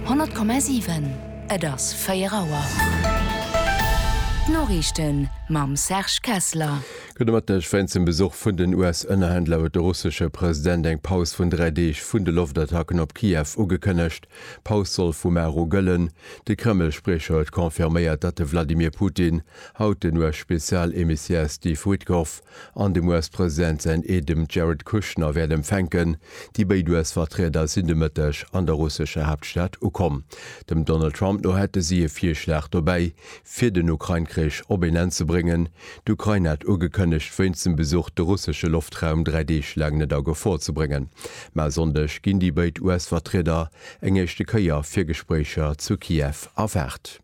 100,7, Et ass 4 Auer. D'Noriichten mam Serge Kessler. Gudde Mëtteg. Wéinst dem Besuch vun den US-Ënnerhändler huet de russesche President eng Paus vun dräi Deeg vun de Loftattacken op Kiew ugekënnegt. D'Paus soll vu mar u gëllen. De Kreml-Spriecher huet confirméiert, datt de Vladimir Putin haut den US-Spezial-Emissaire Steve Witkoff An dem US-President säin Eedem Jared Kushner wäert empfänken. Déi béid US-Vertrieder sinn de Mëtteg an der russescher Haaptstad ukomm. Dem Donald Trump no hätte si e Virschlag dobäi, fir den Ukrain-Krich op een Enn ze bréngen. D'Ukrain hat ugekënnegt, wéinst dem Besuch de russesche Loftraum dräi Deeg laang net a Gefor ze bréngen. Mä e Sonndeg ginn déi béid US-Vertrieder eng éischte Kéier fir Gespréicher zu Kiew erwaart.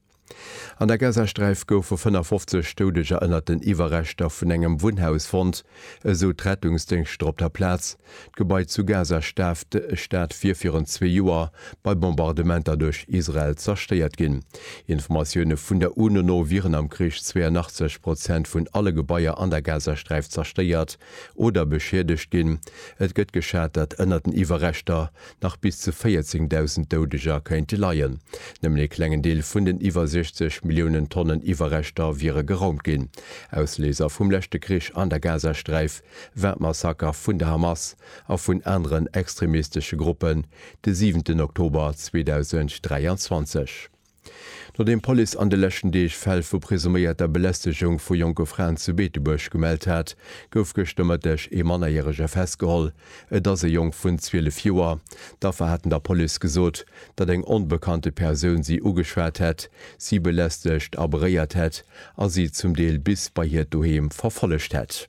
An der Gazasträif goufe 55 Doudeger ënnert den Iwwerreschter vun engem Wunnhaus fonnt, esou d'Rettungsdéngschter op der Plaz. D'Gebai zu Gazastad wier virun zwee Joer bei Bombardementer duerch Israel zerstéiert ginn. Informatioune vun der UNO no wieren am Krich 82 Prozent vun alle Gebaier an der Gazasträif zerstéiert oder beschiedegt ginn. Et gëtt geschat, datt ënnert den Iwwerreschter nach bis zu 14.000 Doudeger kéinte leien. Nëmmen ee klengen Deel vun den iwwer 60 Milliounen Tonnen Iwwerreschter wiere geraumt ginn. Ausléiser vum leschte Krich an der Gazasträif war d'Massaker vun der Hamas a vun aneren extremistesche Gruppen de siwenten Oktober 2023. Nodeem d'Police an de leschten Deeg Fäll vu presuméierter Belästegung vu jonke Fraen zu Beetebuerg gemellt hat, gouf gëschter Mëtteg ee Mannerjärege festgeholl. Et ass e Jong vun 12 Joer. D'Affer haten der Police gesot, datt eng onbekannte Persoun si ugeschwat hätt, si belästegt a beréiert hätt a si zum Deel bis bei hiert Doheem verfollegt hätt.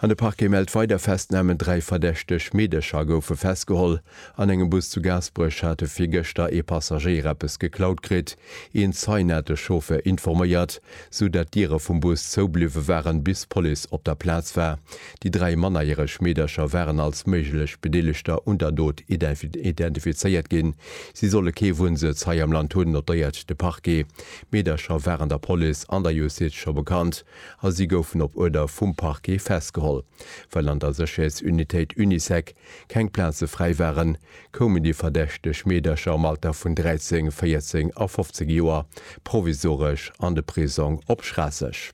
An de Parquet mellt weider Festnamen, Dräi verdächteg Meedercher goufe festgeholl. An engem Bus zu Gaasperech hate virgëschter ee Passagéier eppes geklaut kritt. Een Zeien hat de Chauffeur informéiert, sou datt d'Diere vum Bus zoubliwwe waren, bis d'Police op der Plaz war. Déi dräi mannerjäreg Meedercher waren als méiglech Bedeelegter un der Dot identifizéiert ginn. Si solle kee Wunnsëtz hei am Land hunn, notéiert de Parquet. D'Meedercher waren der Police an der Justiz scho bekannt. a si goufen op Uerder vum Parquet festgeholl. Well an der Sécherheetsunitéit Unisec keng Plaze fräi waren, koumen déi verdächteg Meedercher am Alter vun 13, 14 a 15 Joer provisoresch an de Prisong op Schraasseg.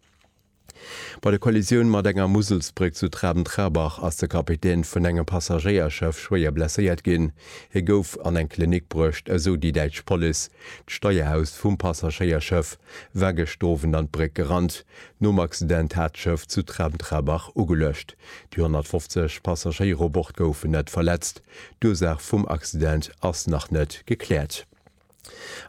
Bei der Kollisioun mat enger Muselsbréck zu Traben-Trarbach ass de Kapitän vun engem Passagéierschëff schwéier blesséiert ginn. Hie gouf an eng Klinik bruecht, esou déi däitsch Police. D'Steierhaus vum Passagéierschëff war gëschter Owend an d'Bréck gerannt. Nom Accident hat d'Schëff zu Tremtrabach ugeluecht. Déi 150 Passagéier u Bord goufen net verletzt. D'Ursaach vum Accident ass nach net gekläert.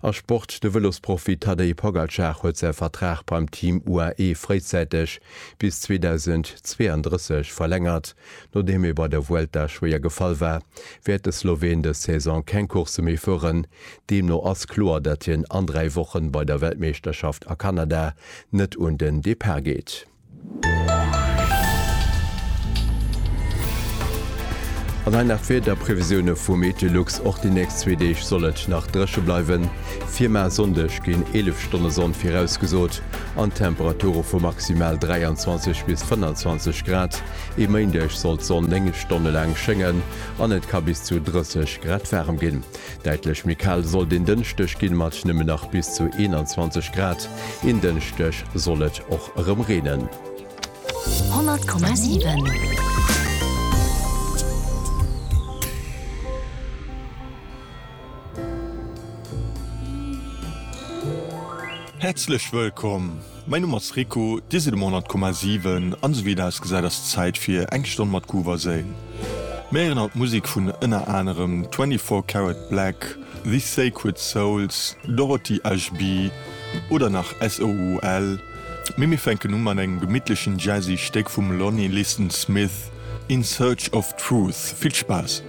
A Sport, De Vëlosprofi Tadej Pogacar huet säi Vertrag beim Team UAE fréizäiteg bis 2032 verlängert. Nodeem e bei der Vuelta schwéier gefall war, wäert de Sloween dës Saison keng Coursse méi fueren. Deemno ass kloer, datt hien an dräi Wochen bei der Weltmeeschterschaft a Kanada net un den Depart geet. An hei nach d'Wiederprevisioune vu Meteolux, Och déi nächst zwee Deeg soll et nach dréche bleiwen. Fir mar Sonndeg ginn 11 Stonne Sonn virausgesot an d'Temperature vu maximal 23 bis 25 Grad. E Méindeg soll d'Sonn 9 Stonne laang schéngen an et ka bis zu 30 Grad waarem ginn. Däitlech méi kal soll den Dënschdeg ginn, mat nëmmen nach bis zu 21 Grad. En Dënschdeg soll et och erëm reenen. 100,7. Häerzlech wëllkomm! Mäin Numm ass Rico, Dir sidd um 100,7 an esou wéi et ausgesäit ass et Zäit fir eng Stonn mat Guwwerseen. Mir héieren haut Musek vun ënner anerem 24 Carat Black, The Sacred Souls, Dorothy HB oder nach SOUL, mee mir fänken u mat engem gemittlechen jazzy Stéck vum Lonnie Liston Smith, In Search of Truth. Vill Spaass!